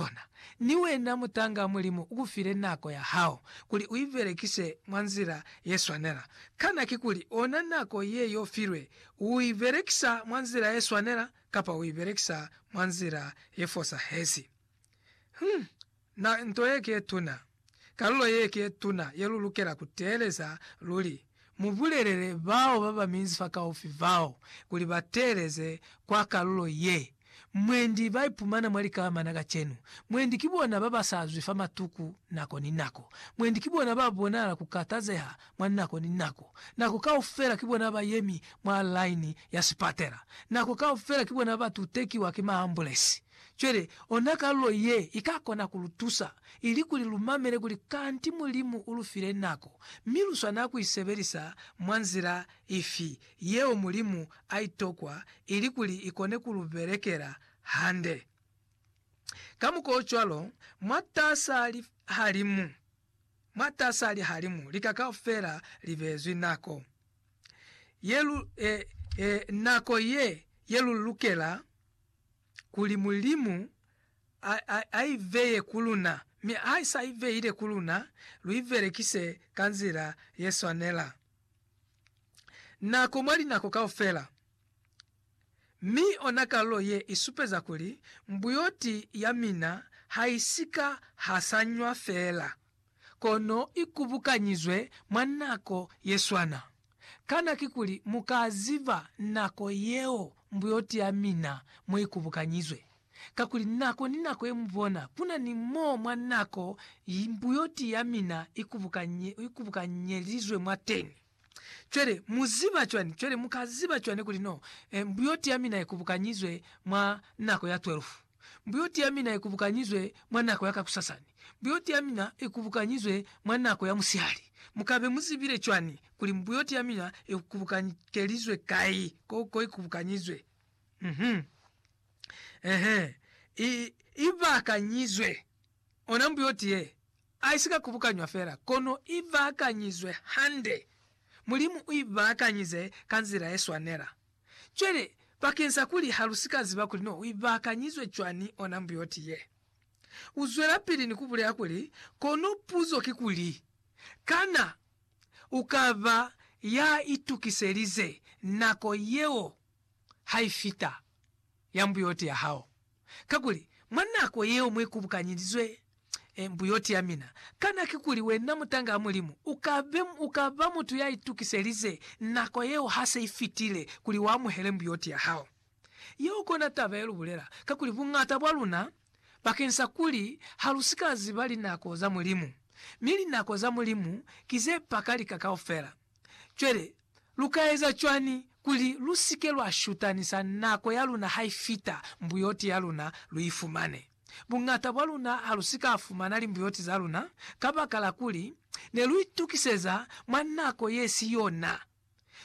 Bona, ni wena mutanga, Mulimu ukufile nako ya hao kuli uibelekise mwa nzila yeswanela. Kana kikuli ona nako ye yofilwe, uibelekisa mwa nzila yeswanela kapa uibelekisa mwa nzila yefosahezi? Hum! Na nto ye ki yetuna. kalulo ye ke tuna ye lu lukela ku teeleza luli. Mu bulelele bao ba ba minzi fakaufi bao kuli ba teeleze kwa kalulo ye. Mwendi ba ipumana mwa likamana kacenu. Mwendi ki bona ba ba sa zwi fa matuku nako ni nako. Mwendi ki bona ba bonala ku katazeha mwa nako ni nako. Nako kaufela ki bona ba yemi mwa laini ya sipatela. Nako kaufela ki bona ba tutekiwa ki maambulesi. Cwale, ona kalulo ye i ka kona ku lu tusa, ili kuli lu mamele kuli kanti Mulimu u lu file nako, mi lu swanela ku i sebelisa mwa nzila ifi yeo Mulimu a i tokwa ili kuli i kone ku lu belekela hande. Kamukwaocwalo, mwatas'a lihalimu, mwatas'a lihalimu lika kaufela li beezwi nako ye lu, e, e, nako ye, ye lu lukela. kuli Mulimu a, a, a i veye ku luna, mi ha i sa i veile ku luna, lu i belekise ka nzila ye swanela. Nako mwa linako kaufela. Mi ona kalulo ye i supeza kuli mbuyoti ya mina ha i si ka hasanywa fela. kono i kubukanyizwe mwa nako ye swana. Kana kikuli mu ka ziba nako yeo mbuyoti ya mina mo i kubukanyizwe? Kakuli nako ni nako ye mu bona, ku na ni mo mwa nako mbuyoti ya mina i kubukanyelizwe mwateni. Cwale, mu ziba cwani? Cwale, mu ka ziba cwani kuli no, e, mbuyoti ya mina i kubukanyizwe mwa nako ya twelufu? Mbuyoti ya mina i kubukanyizwe mwa nako ya kakusasani. Mbuyoti ya mina i kubukanyizwe mwa nako ya musihali. Mu ka be mu zibile cwani kuli mbuyoti ya mina i kubukanyikelizwe kai, ko, ko i kubukanyizwe? Uh-huh. Uh-huh. I, i bakanyizwe. Ona mbuyoti ye, aisika kubukanywa fela, kono i baakanyizwe hande. Mulimu u i baakanyize ka nzila ye swanela. Cwale, bakeng sa kuli ha lu si ka ziba kuli no u i baakanyizwe cwani ona mbuyoti ye, u zwelapili ni ku bulela kuli, Kono puzo ki kuli, Kana u ka ba ya itukiselize nako yeo ha i fita, ya mbuyoti ya hao? Kakuli, mwa nako yeo mu ikubukanyelizwe mbuyoti ya mina, kana kikuli wena mutang'a Mulimu u ka be, u ka ba mutu ya itukiselize nako yeo ha se i fitile kuli u amuhele mbuyoti ya hao? Yeo kona taba ye lu bulela, kakuli buñata bwa luna, bakeng sa kuli ha lu si ka ziba linako za Mulimu, mi linako za Mulimu ki ze paka lika kaufela. Cwale, lu ka eza cwañi kuli lu si ke lwa shutanisa nako ya luna ha i fita mbuyoti ya luna lu i fumane? Buñata bwa luna ha lu si ka fumana limbuyoti za luna kabakala kuli ne lu itukiseza mwa nako ye si yona,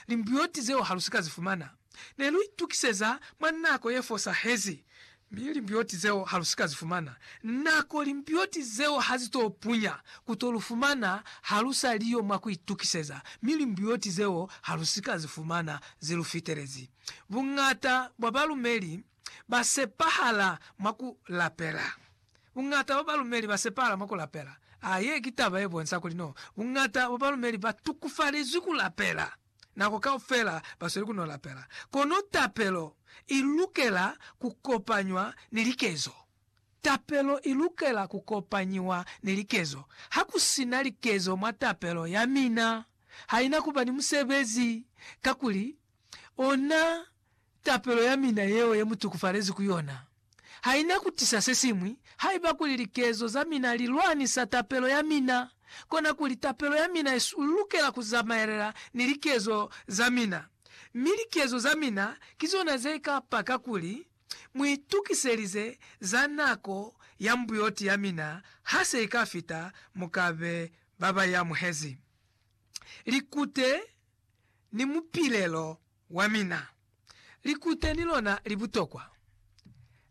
limbuyoti zeo ha lu si ka zi fumana. Ne lu itukiseza mwa nako ye fosahezi, mi limbioti zeo ha lu si ka zi fumana. Nako limbioti zeo ha zi t'o punya, ku t'o lu fumana ha lu sa li yo mwa ku itukiseza, mi limbioti zeo ha lu si ka zi fumana zi lu fitelezi. Buñata bwa balumeli ba sepahala mwa ku lapela. Buñata bwa balumeli ba sepahala mwa ku lapela. A Ye ki taba ye bonsa kuli no buñata bwa balumeli ba tukufalezwi ku lapela. Nako kaufela basweli kuno lapela, kono tapelo ilukela kukopanywa ni likezo. Tapelo ilukela kukopanyiwa ni likezo. Hakusina likezo mwa tapelo yamina, haina kuba ni musebezi, kakuli ona tapelo ya mina yeo ye mu tukufalezi ku yona ha i na ku tisa se siñwi. Haiba kuli likezo za mina li lwanisa tapelo ya mina, konakuli tapelo ya mina i lukela ku zamaelela ni likezo za mina. Mi likezo za mina ki zona ze ka paka kuli mu itukiselize za nako ya mbuyoti ya mina ha se i ka fita. Mu ka be ba ba i amuhezi likute ni mupilelo. Wamina, likute ni lona li butokwa.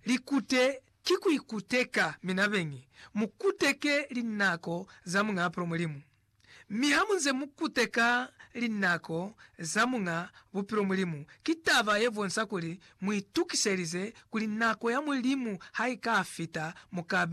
Likute ki ku ikuteka mina beñi. Mu kuteke linako za Muñ'a Apolo Mulimu. Mi ha mu nze mu kuteka linako za Muñ'a Bupilo Mulimu, ki taba ye bonsa kuli mu itukiselize kuli nako ya Mulimu ha i ka fita, mu ka be